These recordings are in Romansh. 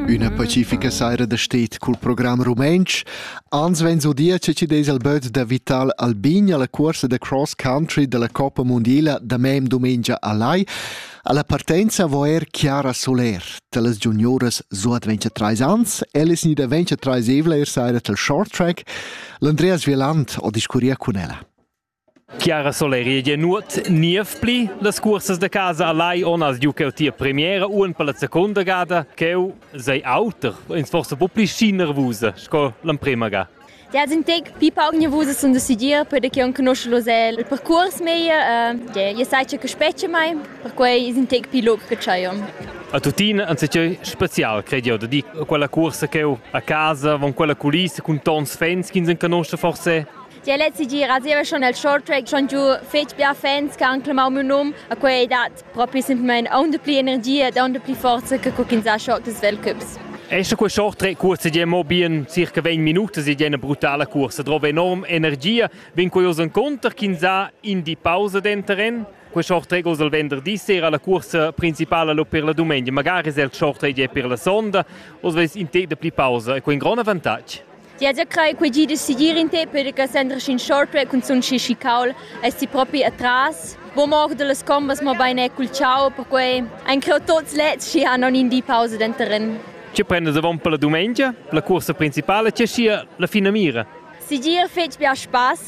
Üna pacifica saira da stet cul program rumentsch, ans vegn udia che ci des al böt da Vital Albin alla cuorsa da cross country della Coppa Mondiala da mem domengia a Lai. Alla partenza vo er Chiara Soler, talas junioras so adventure trais ans, ellis ni da venture trais evla er saira tal short track, l'Andreas Vieland o discuria cun ella. Chiara Soleri ei nuot niev pli. Las cursas da casa a Lai on as giucau tia premiera uon per la secunda gada. Cheu sei auter, ins forse po pli schi nervusa sco l'emprema ga. Ja, sind tec pipa ognievusas und decidir perché on conosce lo se il percurs meglio, eh, je sai che specie mai, per cui sind tec più loc che c'aio. A tutina anziché special, credo, da di quella corsa che a casa, con quella culissa, con tons fans che non conosce forse Tier lez segira zieva schon el shorttrack schon giu fetg bia fans che han clamau miu num, a quei dat propi semplamein aunc dapli energia e aunc dapli forza che co ch'ins ha short des Weltcups. Esta quei shorttrack cursa gia mo bien circa 20 minutas ed è una brutala cursa. Trova enorm energia, vin curioso encontrar ch'ins ha in di pausa denteren. Quei shorttrack uss il venderdi sera la cursa principala lo per la domenica. Magari è il shorttrack è per la sonda, oz ves in tec de pli pausa e quei un grande avantatg. Ti has crei quei gi da segir in te perche sendras in shortway cun sun schi chicaul es ti propi atras. Bo mor dallas combas mo bein è cul ciao perquei ein creu tots lets schi han in di pausa denteren. Ti prendas avon per la dumengia, la cuorsa principala, ti sia la finamira. Segir fetg bia spass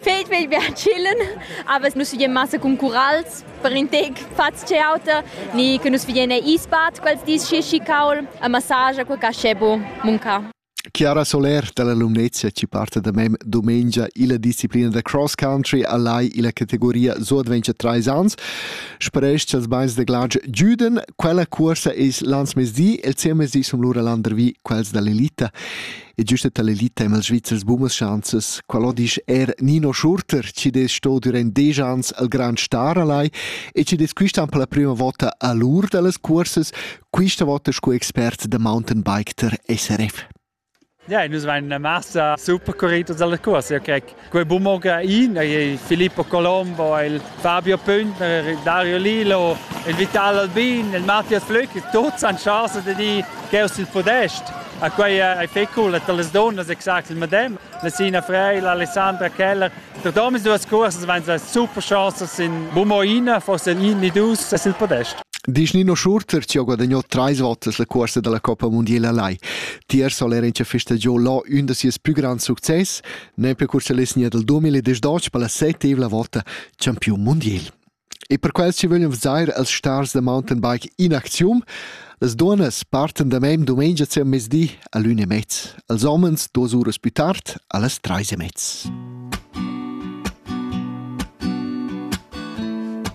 Fed vegl bia chillen, aber nus vegin massa cun curals per in tec faz ce auter, ni che nus vegin ei isbat quels dis schishi caul a massage quel cascebo munca. Chiara Soler dalla Lumnezia ci parta da mem domengia illa disciplina da cross country a lai illa categoria So Adventure Treis ans. Spresch als beins de glatsch giuden. Quella cuorsa es l'ans mezdi, el zehn mezdi sum lura landervi quels dall'elita. E giusta tal'elita e'm els Svizzers bumas schanzas, qualò disch er Nino Schurter, chi dess sto durant desch ans al grand star alai e chi dess quistan per la prima vota a l'ur da las cuorsas, quista vota sco expert da mountainbike der SRF. Ja, nus vain a massa super curritos alla cuorsa, io crec Quei bu moga in ei Filippo Colombo, il Fabio Püntner, Dario Lilo, il Vital Albin, il Matthias Flück, tuts han chasa de dir cheu sil podest. A quei ei fecul dat las donnas exact il medem. La Sina Frey, l'Alessandra Keller, tot omis duas cursas van sa super chasas in Bumoina, forse in ni dus sil podest. Disch Nino Schurter ci ha guadagnato tre volte la corsa della Coppa Mondiale a Lai. Tier soll er in festa giò là un da sies più grand success, Nempe cur cha l'esigna dal 2018 per la settevla vota champiun mundial. E per quels chi vöglan vezair als stars da mountainbike in aczium, las duonnas partan da mem dumengia sia mezdi a l'ün e mezz, als homens duos uras più tard a las trais e mezz.